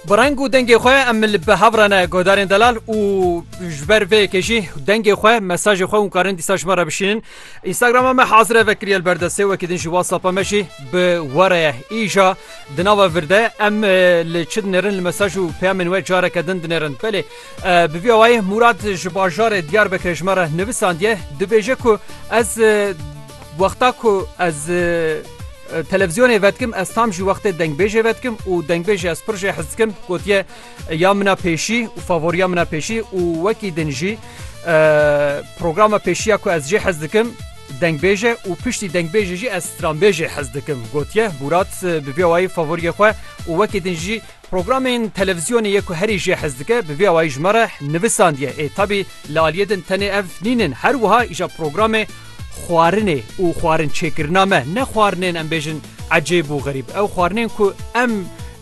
Bi reng û dengê xwe em li bi hev re ne guhdarên delal û ji ber vê yekê jî dengê xwe mesajê xwe hûn karin dîsa ji me re bişînin. Instagrama me hazire vekiriye li ber destê wekî din jî WhatsAppa me jî bi we re ye. Îja di nava vir de em li çi dinêrin li mesaj û peyamên we careke din dinêrin. Belê bi vî awayê Mûrad ji bajarê Diyarbekirê ji me re nivisandiye dibêje ku ez wexta ku ez Televîzyonê vedikim ez tam jî wextê dengbêjê vedikim û dengbêjê ez pir jê hez dikim gotiye ya min a pêşî û favoriya min a pêşî û wekî din jî programa pêşiya ku ez jê hez dikim dengbêje û piştî dengbêjê jî ez stranbêjê hez dikim gotiye Bûrat bi vê wayî favoriya xwe û wekî din jî Programên televîzyonê yê ku herî jê hez dike bi vî awayî ji me re nivisandiye. Ê tabî li aliyê din tenê ev nîn in her wiha îja programê xwarinê û xwarin çêkirina me ne xwarinên em bêjin ecêb û xerîb ew xwarinên ku em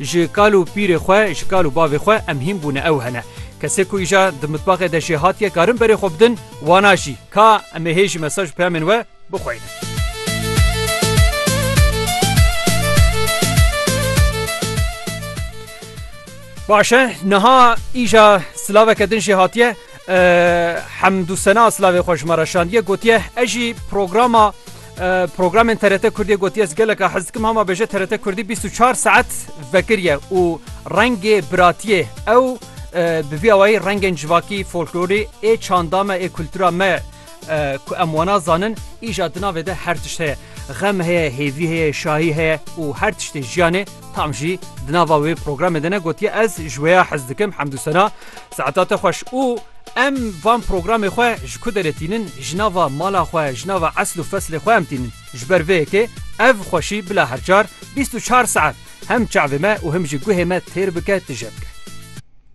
ji kal û pîrê xwe ji kal û bavê xwe em hîn bûne ew hene. Kesê ku îja di mitbaxê de jê hatiye karin berê xwe bidin wana jî. Ka em ê hê jî mesaj û peyamên we. bixweynin. Baş e niha îja silaveke din jî hatiye hemdû sena silavê xwe ji me re şandiye gotiye ez jî programa programên TRT Kurdî gotiye ez geleka hez dikim hema bêje TRT Kurdî 24 saet vekiriye û rengê biratiyê ew bi vî awayî rengên civakî folklorî ê çanda me ê kultura me Ku em wana zanin îja di navê de her tişt heye. Xem heye, hêvî heye, şahî heye û her tiştê jiyanê tam jî di nava wê programê de ne gotiye ez ji wê ya hez dikim hemdû sena saeta te xweş û em van programê xwe ji ku derê tînin ji nava mala xwe ji nava esl û feslê xwe em tînin ji ber vê yekê ev xweşî bila her çar bîst û çar saet hem çavê me û him jî guhê me têr bike tije bike.